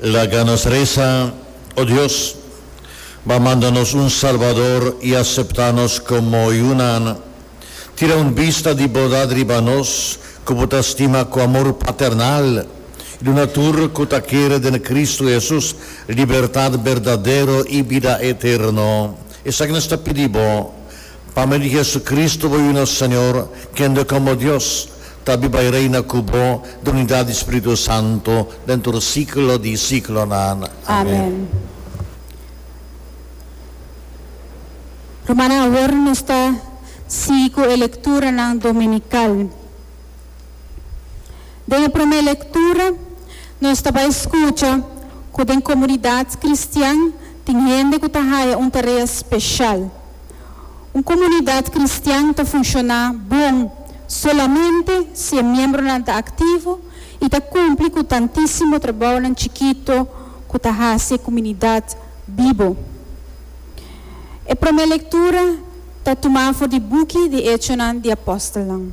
Laga nos resa, O Dios, Bo a manda nos un Salbador i aseptá nos komo yunan. Tira un bista di bondad riba nos, ku Bo ta stima ku amor paternal, i duna tur ku ta kere den Kristu Hesus libertat berdadero i bida eterno. Esaki nos ta pidi Bo. Pa mei di Jesucristo bo yuna Señor, kende como Dios ta biba i reina cu bo den unidad di Spiritu Santo den tur siglo di siglonan. Amen. Rumannan, awor nos ta sigui cu e lecturanan dominical. Den e prome lectura nos ta bay scucha cu den comunidad cristian tin hende cu ta haya un tarea special. Un komunidat kristian ta funshoná bon solamente si e miembronan ta aktivo i ta kumpli ku tantísimo trabounan chikitu ku ta hasi e komunidat bibo. E promé lektura ta tumá for di buki di Echonan di Apòstelnan.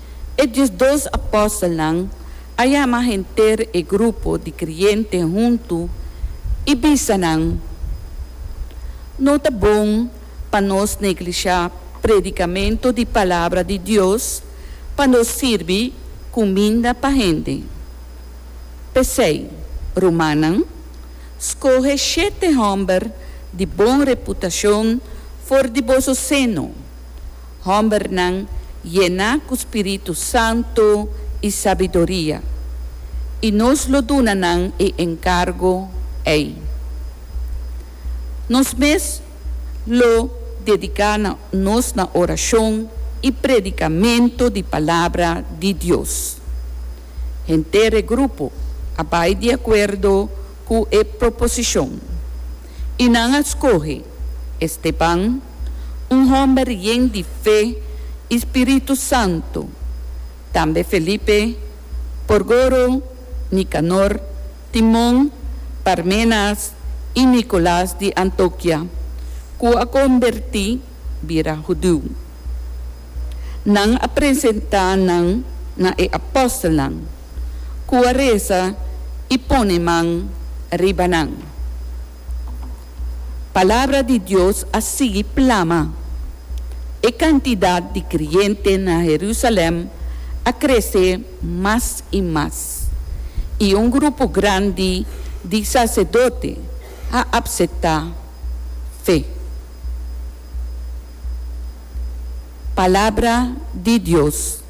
E diesdos apòstelnan a yama henter e grupo di kreyente huntu i bisa nan, No ta bon pa nos neglishá predikamentu di Palabra di Dios pa nos sirbi kuminda pa hende. P'esei, rumannan, skohe shete hòmber di bon reputashon for di boso seno. Hombernan yená ku spiritu santu i sabiduria, i nos lo duna nan e enkargu ei. Nos mes lo dediká nos na orashon i predikamentu di Palabra di Dios. Henter e grupo a bai di akuerdo ku e proposishon, i nan a skohe Esteban, un hòmber yen di fe i spiritu santu. Tambe Felipe, Porgoro, Nikanor, Timon, Parmenas i Nikolas di Antokia, ku a kombertí bira hudiu. Nan a presentá nan na e apòstelnan, ku a resa i pone man riba nan. Palabra di Dios a sigui plama. E kantidat di kreyente na Herusalèm a krese mas i mas, i un grupo grandi di saserdote a apseptá fe. Palabra di Dios.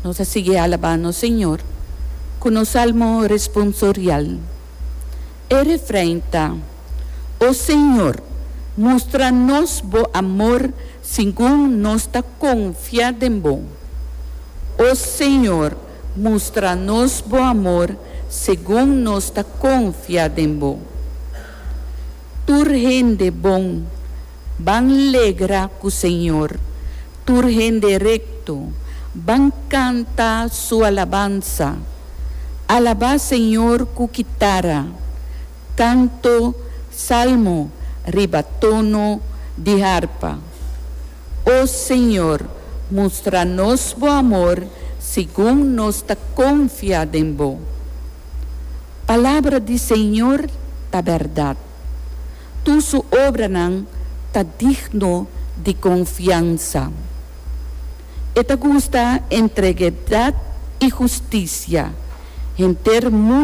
Nos a sigui alabá nos Señor cu nos salmo responsorial. E refrein ta, O Señor, mustra nos bo amor segun nos ta confia den bo. O Señor, mustra nos bo amor segun nos ta confia den bo. Tur hende bon Ban legra ku Señor, tur hende rekto, ban kanta Su alabansa. Alabá Señor ku kitara, kanto, salmo riba tono di harpa. O Señor, mustra nos Bo amor segun nos ta konfia den Bo. Palabra di Señor ta bèrdat. Tur su obranan ta digno di confiansa. E ta gusta entregedad i husticia. Henter.